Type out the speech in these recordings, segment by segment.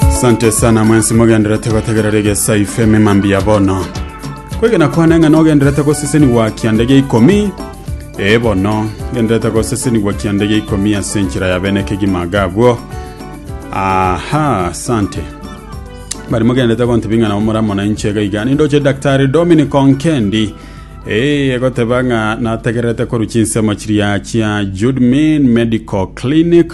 Asante sana mwensi mogenderete gotegera rege saife memambi ya bono kwegena kwane ng'a nogenderete gosesenigwa kiande gia ikomi ee bono genderete gosesenigwa kiande gia ikomi ase enchera ya bene kegima gabwo aha asante bari mogenderete gontebia ng'a nabo moramo na inche iga iga nindoche daktari dominic onkendi ee egoteba ng'a nategererete koru chinsemo chiria chia judmin medical clinic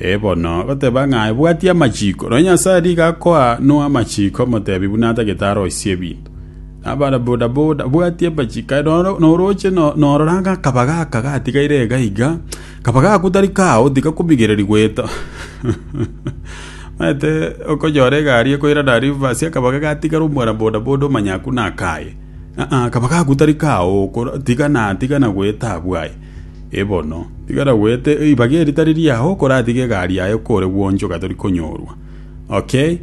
Ee bono, goteba ng'a ebwatia amachiko, nonya Nyasae nigo akoa Noa amachiko omotebi buna atagete aroisie ebinto. Nabana boda boda, bwatia amachiko aye nonya noroche norora ng'a akaba gaka gatigaire iga iga, kaba gakwo tari kao tigakomigereri goeta. Omanyete okonyora egari ekoirana reverse akaba gatigara omwana boda boda omanya akwo nakaye. Kaba gakwo tari kao, tigana tigana goeta abwo aye. E bono, tigara goeta eribaga eri tari riao, koratige egari yaye kore gwonchoka tori konyorwa. Okay.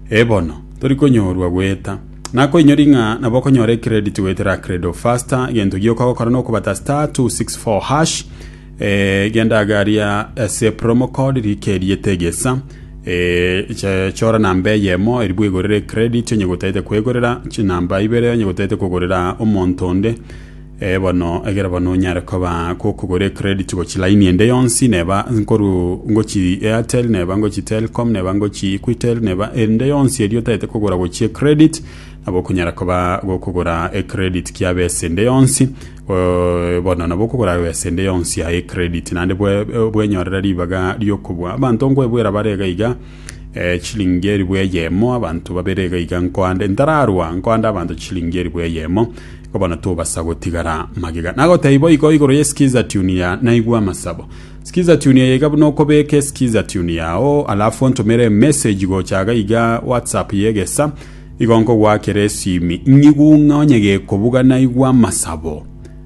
E bono, tori konyorwa goeta. Nakoinyori ng'a nabo okonyora ecredit goetera Credo Faster, egento gioka gokora nokobata star 264 hash, eh, genda agaria ase promo code rika eriete egesa, eh, che- chora namba eyemo eri bwegorere ecredit onye gotaete kwegorera, chinamba ibere onye gotaete kogorera omonto onde, Ee bono, egera bono onyare koba gokogora ecredit gochia line ende yonsi, neba nkoru ngochi Airtel, neba ngochi Telcom, neba ngochi Equitel, neba ende yonsi eria otaete kogora gochia ecredit, nabo okonyara koba gokogora ecredit kia besa ende yonsi, eh, bono nabo okogora besa ende yonsi ya ecredit. Naende bwe- bwenyorera ribaga riokobua abanto nkoebwera bare iga iga, Eh, chilingi eribu eyemo, abanto babere iga iga nkoande, ntararwa nkoande abanto chilingi eribu eyemo, igo bono tobasa gotigara magega. Nagotebia boigo igoro ye skiza tune ya naigwa amasabo. Skiza tune eye iga buna okobeke skiza tune yao, alafu ontomere message gocha iga iga WhatsApp ye egesa, igo nkogwakera esimi ng'igung'a onye gekobuga naigwa amasabo.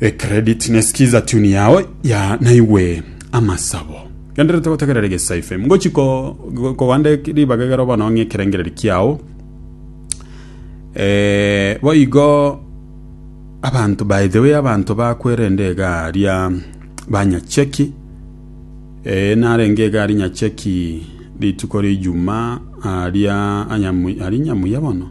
E credit ne skiza tune yao ya naigwe amasabo. Genderete gotegerera egesaife. Ngochi ko kogande ribaga igero bono ng'e ekerengereri kiao. Eh, boigo abanto by the way abanto bakwerende egaria banyacheki eh, narenge egari nyacheki rituko rijuma aria anyamu ari nyamuya bono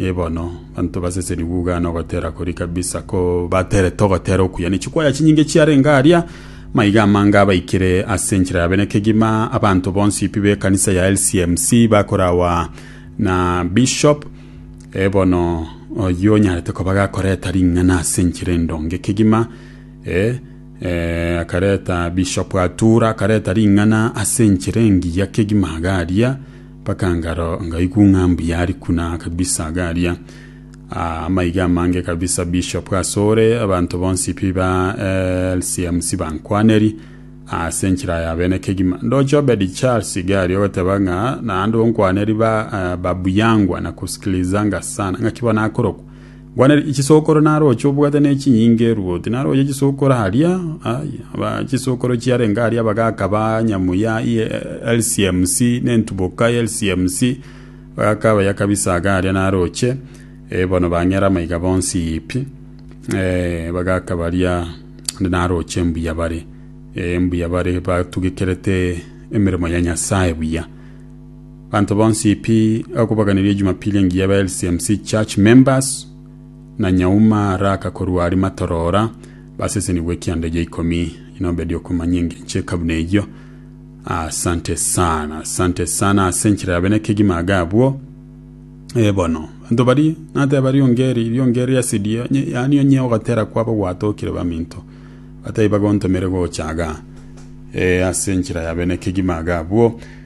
Ee bono, banto baseseni buga na ogotera koria kabisa ko baterete ogotera okuya. Ne chikwaya chinyinge chiarenge aria, maiga amange abaikire ase enchera yabe. Ne kegima abanto bonsi pi b'ekanisa ya LCMC bakorawa na Bishop. Ee bono, oyio onyarete koba gakoreta ring'ana ase enchera endonge kegima. Ee, eh, akareta Bishop atura, akareta ring'ana ase enchera engiya kegima iga aria. Mpaka ngaro ngaigwa ng'a mbuya ari kuna kabisa iga aria. Ah, amaiga amange kabisa Bishop asore abanto bonsi pi ba LCMC bankwaneri ase enchera ya bene kegima. Ndoche Obed Charles iga aria ogoteba ng'a naende onkwaneri ba, ah, babuyangwa na kusikilizanga sana. Ng'aki bono akorokwa? Gwanera chisokoro naroche obwate ne chinyinga eruoti naroche chisokoro aria ai aba chisokoro chiarenge aria bagaka ba nyamuya iye LCMC ne ntuboka ye LCMC bagaka abaya kabisa aga aria naroche eh, bono bang'era amaiga bonsi yipi eh, bagaka baria ande naroche mbuya bare eh, mbuya bare batugekerete emeremo ya Nyasaye buya Abanto bonsi pi okobaganeria Jumapili engiya aba LCMC Church members na nyauma raka korwa aria matorora basesenigwe ekianda egia ikomi inobedi okomanya engencho eka buna eyio asante sana asante sana ase enchera yabe nekegima aga abwo Eh, bono banto bari nateba riongeri riongeri asidio nye- yaani onye ogotera kwabo gwatokire baminto batai bagontomere gochaga eh, ase enchera yabe nekegima aga abwo